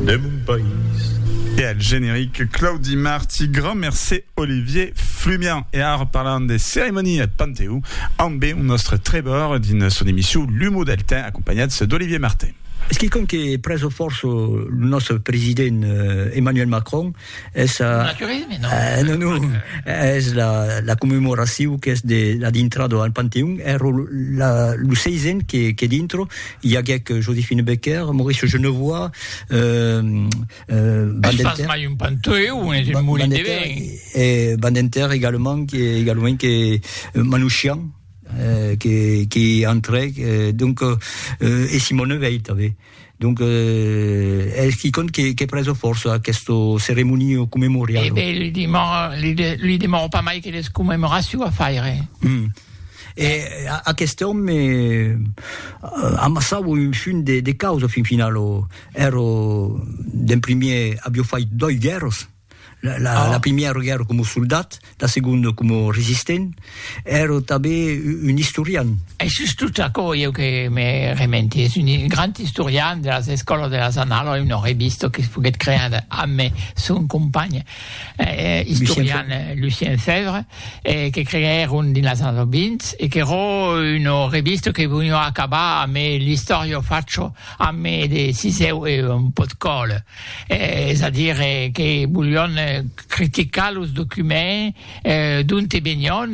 de mon país. E al generic, Claudi Marti, grand mercé Olivier Flumian. E ara parlam de ceremonia eth Panteó ambe un nòstre trèbor dins son emission L'humo del temps acompanhats d'Olivier Martin. Es quicòm que prèso fòrça lo nòstre president Emmanuel Macron. Es a... Naturisme, non? Eh, non, non. Es la, la commemoracion qu'es de la dintrada al Panteon. Ero la, lo seisen que, que dintro i aguec Josephine Becker, Mauricio Genevois, euh, euh, Bandenter... Es pas mai un Panteon, es un molin de vent. E Bandenter egalement, que, egalement que Manouchian, eh, que, que entrèc, eh, donc, eh, e Simone Veit, tanben. Donc, eh, es quicòm que, que preso fòrça aquesto ceremonio commemoriado. Eh ben, li demò, li, de, li demò pas mai que les commemoraciu a faire. Mm. E a, aquest òme eh, amassau un fun de, de causa fin final, o, ero, d'en primier, abio fait doi guèrras, La, la, ah. la primièra guerra com soldat, la seconda com resistent, era tanben un historian. E sus tot aquò, eu que me rementi, és un grand historian de las escolas de las anales, eu non he vist que es poguet crear amb son company eh, historian eh, Lucien Fèvre, eh, que creèron dins las anales 20 e que ro un revista que veniu acabar amb l'Historio Faccio, amb de siseu e un pot còl. es a dire que volion criticar los documents d'onte venion,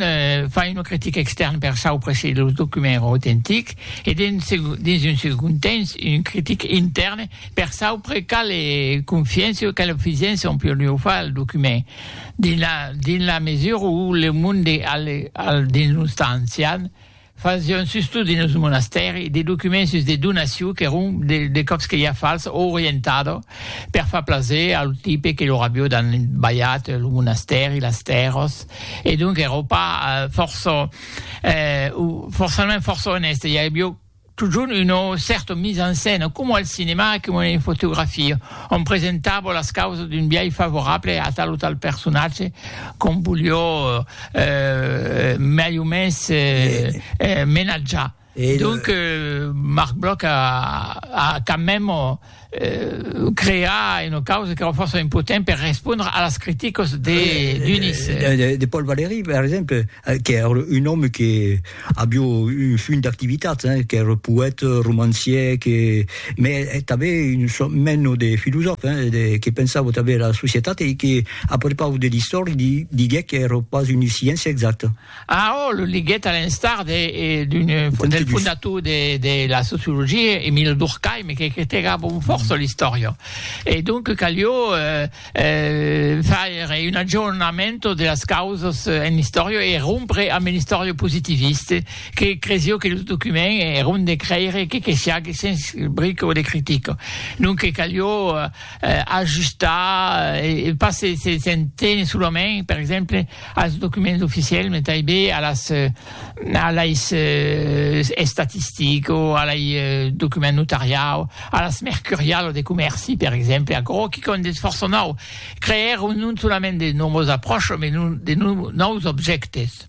far una critica extèrna per saupre se los documents èran autentics e dins un segond temps una critica intèrna per saupre quala confiança o quala fisença on podiá far al document dins la mesura où le monde al dins los temps ancians Fasión sus tot dins lo monastèri de documents sus de donaciu qu'èron de còps que ja fals o orientada per far plaser a lo tipe que lor avió dan balhat lo monastèri, las tèrras e donc èra pas fòrça o forçament fòrça onèste, i avió totjorn una cèrta mise en scène coma al cinema, coma en fotografia. On presentavo las causas d'un biais favorable a tal o tal personatge qu'on volió mai o mens menatjar. Donc Marc Bloch a quand même creat una causa qu'èra fòrça impotent per respondre a las criticas de d'unis. De Paul Valéry, per exemple, qu'èra un òme que Avió un funt d'activitats, qu'ère poète, romancier, que me tanben un sòrt meno de filosòf, que pensavo tanben era societat e que a prepau de l'istòri li diguec qu'ère pas una sciéncia exacta. Ah, ò, lo diguec a l'instar de d'un del fondator de de la sociologia, Emile Durkheim, que critegava un fòrça l'istòria. E donc calió faire un aggiornamento de las causas en l'istòria e rompre amb l'istòria positivista que cresió que los documents èron de crèire que que siague sens bric o de critica. Donque calió ajustar e pas se se se tenir solament, per exemple, als documents oficiels, mai tanben a las a lei estatistico, a lei document notariau, a las mercurialo de comèrci, per exemple, aquò que quò n'es fòrça nòu, creèr non solament de nòvas apròchas, mai non de nòus objèctes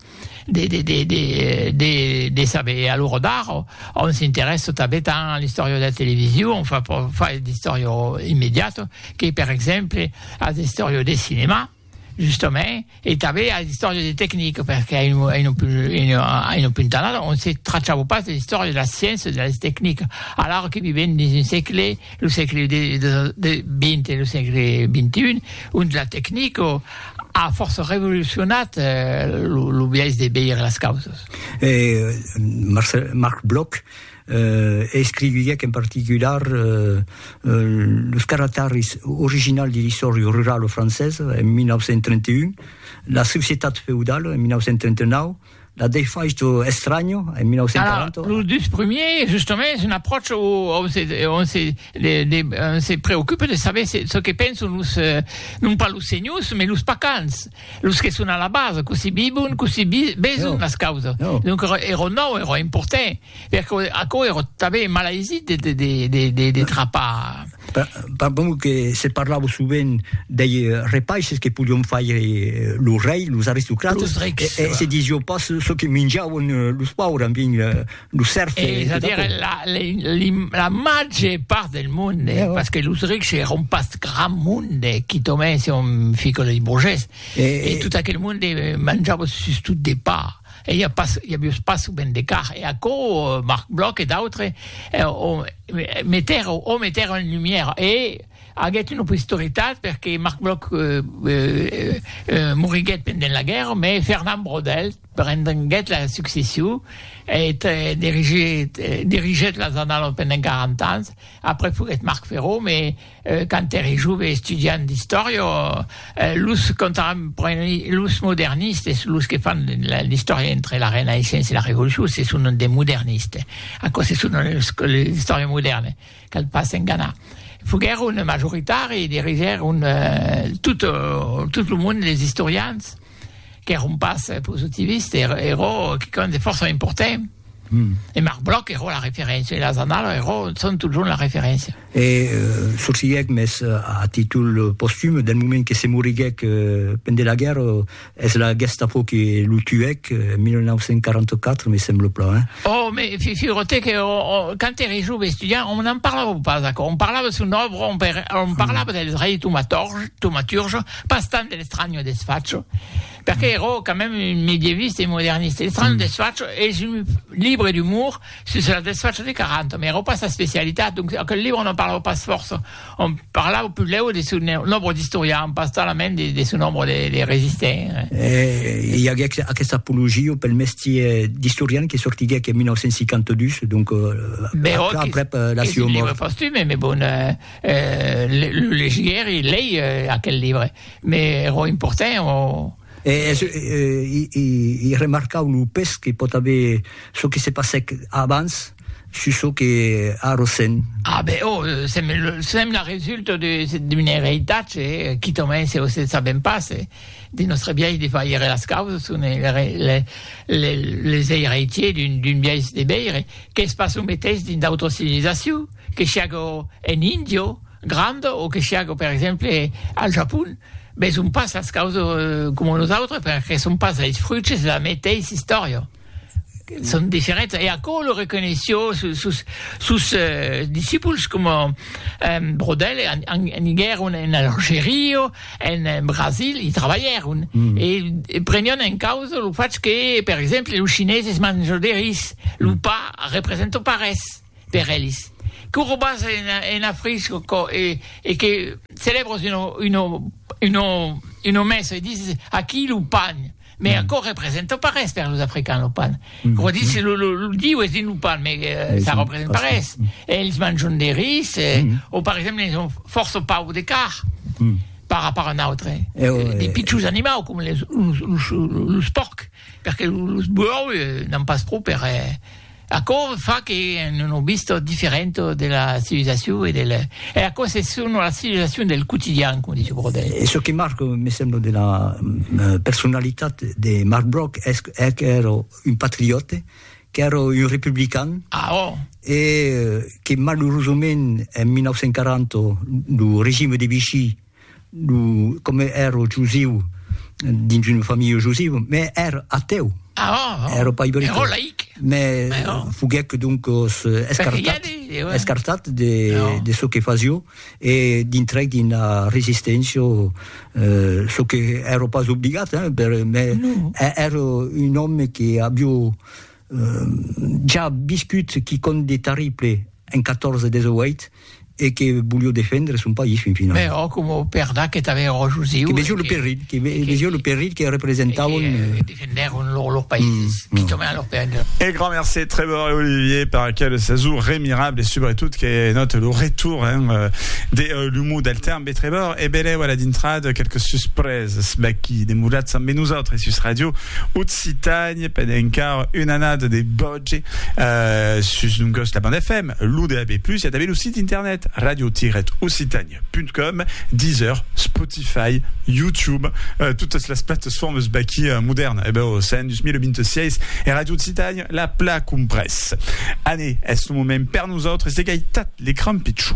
de de de de de de saber. E a l'ora d'ara òm s'interèssa tanben tant a l'istòria de la television, òm fa fa d'istòria immediata, que per exemple a l'istòria de cinemà. Justament, e tanben a l'istòria de tecnic, perque a un punt anat on se trachava pas de l'istòria de la sciéncia e de las tecnic, alara que vivèm dins un sègle, lo sègle XX e lo sègle XXI, ont la tecnic a fòrça revolucionat lo biais de veire las causas. Marc Bloch. e escriviec en particular los caractaris originals de l'istòria rurala francesa en 1931, la societat feudala en 1939, la defaicho estranho en 1940. Los dus primiers, justament, es un apròch ont se, ont se, de, de, on se preocupa de saber se, ce que pensan los, euh, non pas los senhors, mais los pacans, los que son a la base, cossí vivon, cossí vi, beson no. las causas. No. Donc, era nòu, era important. Perque aquò ère tanben malaisit de trapar. Pas bon que se parlava sovent dei repaisses que podion faire lo rei, los aristocrates, e se disió pas çò que minjavan los paures, en fin, los sèrfs. Es a dire, la màger part del monde, pas que los rics èran pas grand monde, quitament se on fica lei borgés, e tot aquel monde manjava sustot de pa. E i a pas, i a vius pas ben de car, e aquò Marc Bloch e d'autres o metèron, o metèron en lumière, e aguèt una posteritat perque Marc Bloch moriguèt pendent la guèrra, mès Fernand Braudel prenguèt la succession e dirigèt las Annalas pendent 40 ans, après foguèt Marc Ferron, mès Quand ère jove estudiant d'istòria, los contemporanis, los modernistes, los que fan l'istòria entre la Renaissença e la Revolucion, se son des modernistes. Aquò se son l'istòria modèrna, cal pas enganar. Foguèron majoritari, dirigèron tot lo monde des istorians qu'èron pas positivistes, èra quicòm de fòrça important. E Marc Bloch èra la referéncia, e las annalas èran, son totjorn la referéncia. E sorsilhèc, mès a títol postum, del moment que se moriguèc pendent la guèrra, es la Gestapo que lo tuèc, en 1944, me sembla plan, hein? Oh, me figure-te que quand ère jove estudiant, on n'en parlava pas aquò, on parlava de son òbra, on parlava del rei tomaturge, pas tant de l'estranho desfacho, perque ère quand même un medieviste e moderniste, l'estranho desfacho es un libre d'umor, Sus la desfacha de Caranta, mai era pas sa especialitat, donc aquel libre non parlava pas fòrça, òm parlava pulèu de son nombre d'istorians, pas talament de son nombre de resistents. E i aguec aquesta apologia pel mestier d'istorian que sortiguec en 1952, donc aprèp la sua mòrt. Libre postume, mai bon, lo legiguèri, lei aquel libre, mai era important. E es i remarcau lo pes que pòt aver çò que se passèc abans sus çò que a Rossend. Ah ben oh, sèm la resulta d'un eritatge quitament se se sabèm pas de nòstre biais de faire las causas, son les eiratiers d'un biais de veire, qu'es pas lo meteis dins d'autras civilisacius. Que siágo en Índia granda o que siágo, per exemple, al Japon, veson pas las causas coma nosautres perque son pas es fruits de la meteissa istòria. Son diferents e aquò lo reconeishió sos sos discipuls coma Brodel aniguèron en Algeria, en Brasil, i trabalhèron e prenián en causa lo fach que, per exemple, los chineses manjan de ris, lo pa representa pas res. per elis, que robas en afrisco co e que celebros uno uno uno uno messo e dises aquí lo pan me aco representa pas res per los africans lo pan ro dises lo lo lo diu es dins lo pan me ça representa pas res elis manjon de ris o per exemple elis ont fòrça pau de carn par rapport a n'autre de pichons animau com los los los pòrcs perque los buòus n'an pas pro per Aquò fa que non o visto diferent de la civilizacion e del e aquò se sono la civilizacion del quotidian com dice Brodel. E çò que marc me semblo de la personalitat de Marc Broc es qu'èro un patriote qu'èro un republican ah, oh. e que malurosament en 1940 lo regime de Vichy Lo, coma ero jusiu, dins una familha jusiva, me ero ateu. Ah, oh, oh. Ero pas iberita. Ero laic. Me Mais oh. foguec doncos escartat, de, de, ouais. escartat de, oh. de ce que fasio e dintrec d'una resisténcia, euh, ce que ero pas obligat, hein, per, mais no. ero un òme que avio Jà viscut qui compte de tarrible en 14 des 8 e que volió defendre son país fin finau. Mès òc, coma Perda que tanben era josiu. Que vesió lo perilh, que vesió lo perilh que representauen. E que defendèron lors païses, qui tornèron lors païses. E grand mercé Trevor e Olivier per aquel sejorn mirable e subretot que nòte lo retour, hein, de l'humour del temps. Betrevor e belèu a la dintrada quelques suspresas vaquí demoratz ambe nosautres sus Radio Occitània pendent encara una annada de bòge sus non gòs la banda FM, lo DAB+, i a tanben lo sit internet radio-occitània.com, Deezer, Spotify, YouTube, totas las platesfòrmas vaquí modèrna, ebèu s'an 2026 e Radio Occitània la pla comprés. Anè, es lo moment per nosautres de gaitat le crampitjò.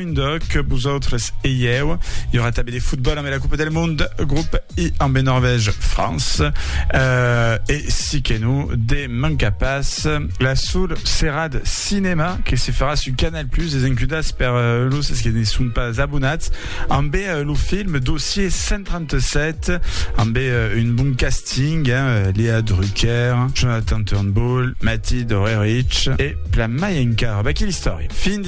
Munde que vosautres eieu. Hi aurà també de futbol amb la Coupe del Monde, grup I amb Norvège, France. Euh, e si que no, de manca pas la sol serad cinema que se farà sur Canal Plus, les encudas per euh, los que ne son pas abonats, amb euh, lo film Dossier 137, amb euh, un bon casting, hein, euh, Léa Drucker, Jonathan Turnbull, Matty Dorerich e plan mai encara. Bah, quelle histoire! Fin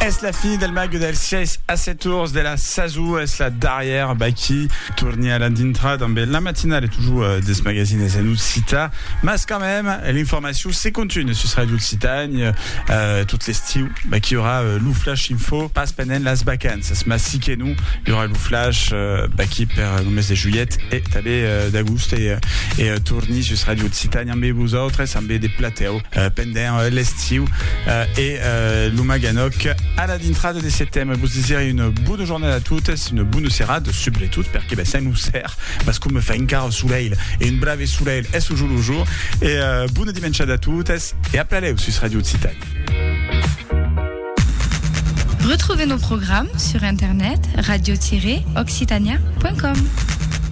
Es la fin del mag dels 6 a 7 tours de la sason, es la darrièra baquí. Torni a la dintra damb la matinal e totjor dels magasines en occitan, mas quand mème l'informacion se continue sus Ràdio Occitània tot l'estiu. Baquí i aurà lo flash info, pas pendent las vacanças, mas si que non i aurà lo flash baquí per lo mes de julhet e tanben d'agost e torni sus Ràdio Occitània ambe vosautres, ambe de platèu. pendent l'estiu e lo Maganòc a la dintrada de setembre. Vos desirè una bona jornada a totes, una bona serada, subretot, perque ben sèm lo ser, mas coma fa encara solelh, e un brave solelh, es lo jolh au jour, e bona dimenchada a totes, e a plaléu sus Radio Occitània. Retrouvez nos programmes sur internet radio-occitania.com.